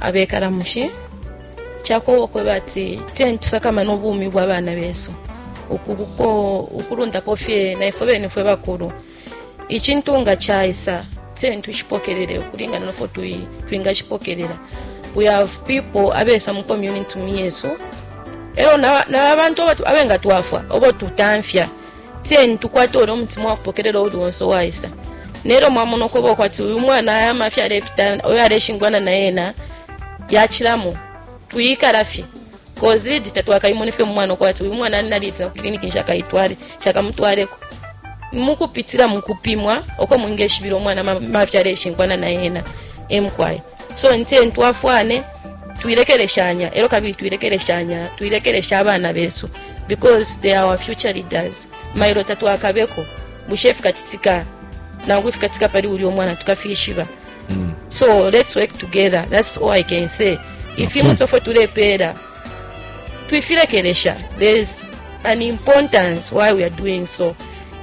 abekala mushi cakowa ukweba ati teni tusakamana ubumi bwa bana besu ukulundapo fye naifwe bene fwe bakulu icintu nga caisa teni tushipokelele ukulingana nofo twingashipokelela we have people abesa mu community yesu elo na, na abantu abengatwafwa obo tutamfya 10 tukwate ulya umutima wa kupokelela uuli wonse uwaisa nelyo mwamona ukweba kwati uyu mwana aya mafya alepita oyo aleshingwana na yena yacilamo twiyikala fye kozidi tatwakayimone fye mumwana ukwati uyu mwana alinaliitina ku kiliniki nshakayitwale shakamutwaleko mukupitila mukupimwa uko mwingeshibila umwana mafya aleshingwana na yena emkwaya so nte ntwafwane twilekeleshanya elo kabili twilekeleshanya twilekelesha abana besu because they are our future leaders mailo tatwakabeko bushe ifikacitika nangu ifikatika pali uli omwana tukafishiba mm. so let's work together that's all i can say ifimu okay. tofwe tulepeela twifilekelesha there's an importance why we are doing so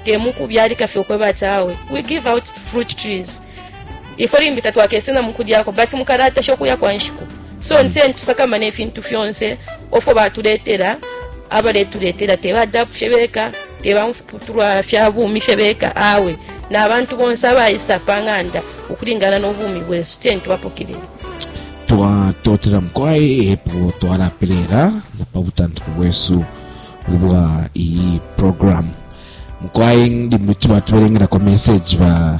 temukubyalika fye okweba ati awe we give out fruit trees Ifwe limbi tatwakese na mukulyako but mukalatasha ukuya kwa nshiku so ntseni tusakamane ifintu fyonse ofo batuletela abaletuletela te badapu fye beka te bamfuputulwa fya bumi fye beka awe na bantu bonse abaisa pa ng'anda ukulingana n'obumi bwesu teni tubapokelele twatotela mukwai epo twalapelela na pa butantiko bwesu ubwa iyi programu mukwai ndi mwitu batubelengela kwa meseji ba